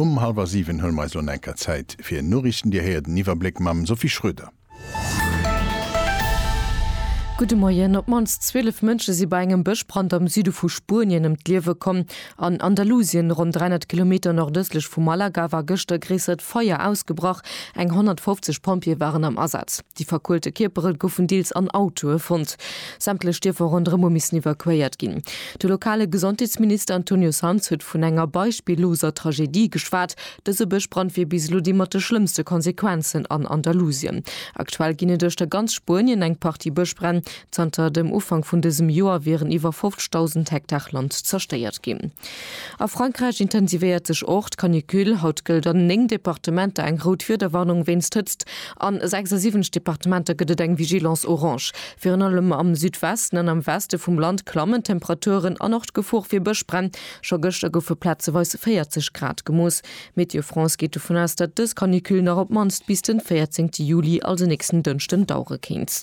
Um hallwer siwen huele mer eis elo nach eng Kéier Zäit fir Noriichten. Dir héiert en Iwwerbléck mam Sophie Schroeder. Gudde Moien. Op d'mannst 12 Mënsche si bei engem Bëschbrand am Süde vu Spuenien ëm d'Liewe komm. An Andalusien, ronn 300 Kilometer nordëstlech vu Malaga, war gëschter e gréissert Feier ausgebrach. Eng 150 Pompjeeë waren am Asaz. Déi verkuelte Kierpere goufen deels an Autoe fonnt. Sämtlech Dierfer ronderëm hu missen evakuéiert ginn. De lokale Gesondheetsminister Antonio Sanz huet vun enger beispilloser Tragedie geschwat. Dëse Bëschbrand wier bis elo dee mat de schlëmmste Konsequenzen an Andalusien. Aktuell ginn et uechter ganz Spuenien eng Partie Bëschbränn, Zanter dem Ufank vun dësem Joer wieren iwwer 50.000 Hektar Land zerstéiert ginn. A Frankräich intensivéiert sech och d'Canicule. Haut gëllt an 9 Departementer eng rout Wiederwarnung wéinst Hëtzt. A 76 Departementer gëtt et eng Vigilance orange. Virun allem am Südwesten an am Weste vum Land klammen d'Temperaturen an och d'Gefor fir Bëschbränn. Scho gëschter goufe plazeweis 40 Grad gemooss. Météo France geet dovun aus, datt dës Canicule nach op d'mannst bis de 14 Juli, also nächsten Dënschden, dauere kéint.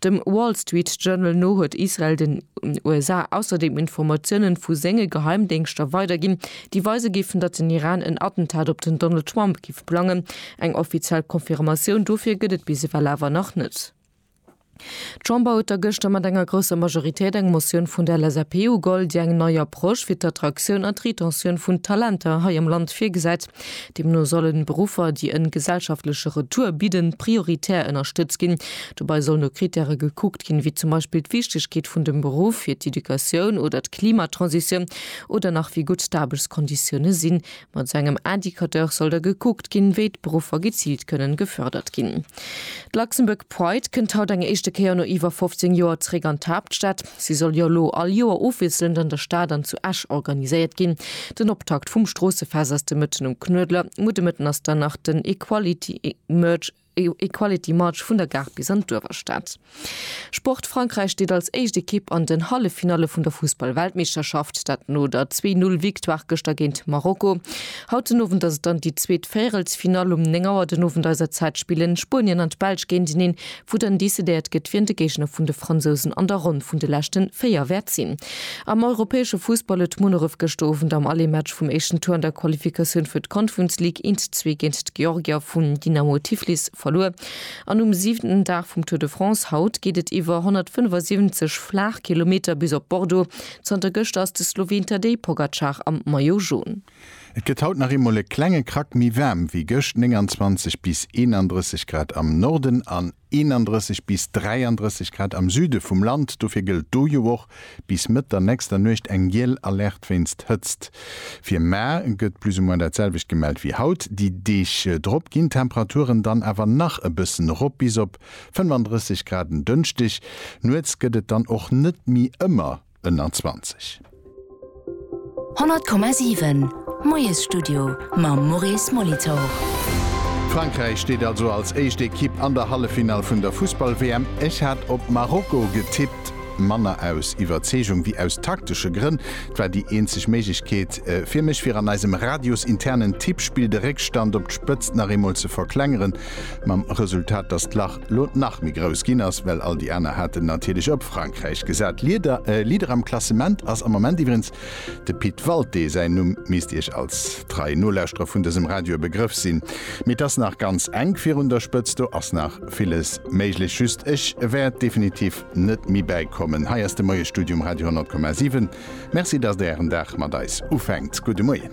Dem Wall Street Journal no huet Israel den USA ausserdeem Informatiounen vu senge Geheimdéngschter weiderginn, déi weise géifen, datt den Iran en Attentat op den Donald Trump géif plangen. Eng offiziell Confirmatioun dofir gëtt et bis ewell awer nach net. D'Chamber huet da gëschter mat enger grousser Majoritéit eng Motioun vun der LSAP ugeholl, déi eng nei Approche fir d'Attraktioun an d'Retentioun vun Talenter hei am Land virgesäit. Deemno sollen Beruffer, déi en gesellschaftleche Retour bidden, prioritär ënnerstëtzt ginn. Dobei soll no Kritäre gekuckt ginn, wéi zum Beispill d'Wichtegkeet vun dem Beruff fir d'Educatioun oder d'Klimatransitioun oder nach wéi gutt d'Aarbechtskonditioune sinn. Mat esou engem Indicateur soll da gekuckt ginn, wéi d'Beruffer geziilt kënnen gefördert ginn. D'Luxembourg Pride kënnt haut eng éischte Kéier no iwwer 15 Joer zeréck an d'Haaptstad. Si soll jo elo all Joer ofwiesselnd an der Stad an zu Esch organiséiert ginn. Den Optakt vum Stroossefest ass de Mëtten um Knuedler. No de Mëtten ass dann nach den Equality Merge, Equality March vun der Gare bis an d'Uewerstad. Sport, Frankräich steet als éischt Ekipp an den Halleffinalle vun der Fussball-Weltmeeschterschaft, dat no der Zwee Null Victoire gëschter géint Marokko. Haut den Owend ass et dann déi zweet Véierelsfinall. Um 9 Auer den Owend eiser Zäit spillen Spuenien an d'Belsch géinteneen. wou dann decidéiert gëtt, wien de Géigner vun de Fransousen an der Ronn vun de leschte véier wäert sinn. Am europäesche Fussball huet Munneref gëschter Owend am Aller-Match vum éischten Tour an der Qualifikatioun fir d'Conference League een zu zwee géint d'Georgier vun Dynamo Tiflis verluer. An um siwenten Dag vum Tour de France haut geet et iwwer 175 Flaachkilometer bis op Bordeaux. Zanter gëschter ass de Sloween Tadej Pogacar am Maillot Jaune. Et gëtt haut nach eemol e klenge Krack méi waarm wéi gëscht, 29 bis 31 Grad am Norden an 31 bis 33 Grad am Süde vum Land. Dofir gëllt do jo och bis Mëtt der nächster Nuecht eng giel Alerte wéinst Hëtzt. Fir mar gëtt plus ou moins dat selwecht gemellt wéi haut. Déi Deeg drop ginn d'Temperaturen dann awer nach e bëssen erop, bis op 35 Grad en Dënschdeg. Nuets gëtt et dann och net méi ëmmer 2021. 100,7 Moiesstudio mam Maurice Molitor. Frankräich steet also als éischt Ekipp an der Halleffinall vun der Fussball-WM. Ech hat op Marokko getippt, manner aus Iwwerzeegung wéi aus taktesche Grënn. Et war déi eenzeg Méiglechkeet fir mech, fir an eisem radiosinternen Tippspill de Réckstand op d'Spëtzt nach eemol ze verklengeren, mam Resultat, dass d'Lach, lo nach méi grouss ginn ass, well all déi aner haten natierlech op Frankräich gesat. Lieder, äh, Leader am Klassement ass am Moment iwwerens de Pit Walté. Säin Numm misst Iech als trei Nolauschterer vun dësem Radio e Begrëff sinn. Mee et ass nach ganz enk virun der Spëtzt, do ass nach villes méiglech. Just ech wäert definitiv net méi bäikommen. Hei ass de Moie-Studio um Radio 100,7. Merci, datt Der Ären Dag mat eis ufänkt. Gudde Moien.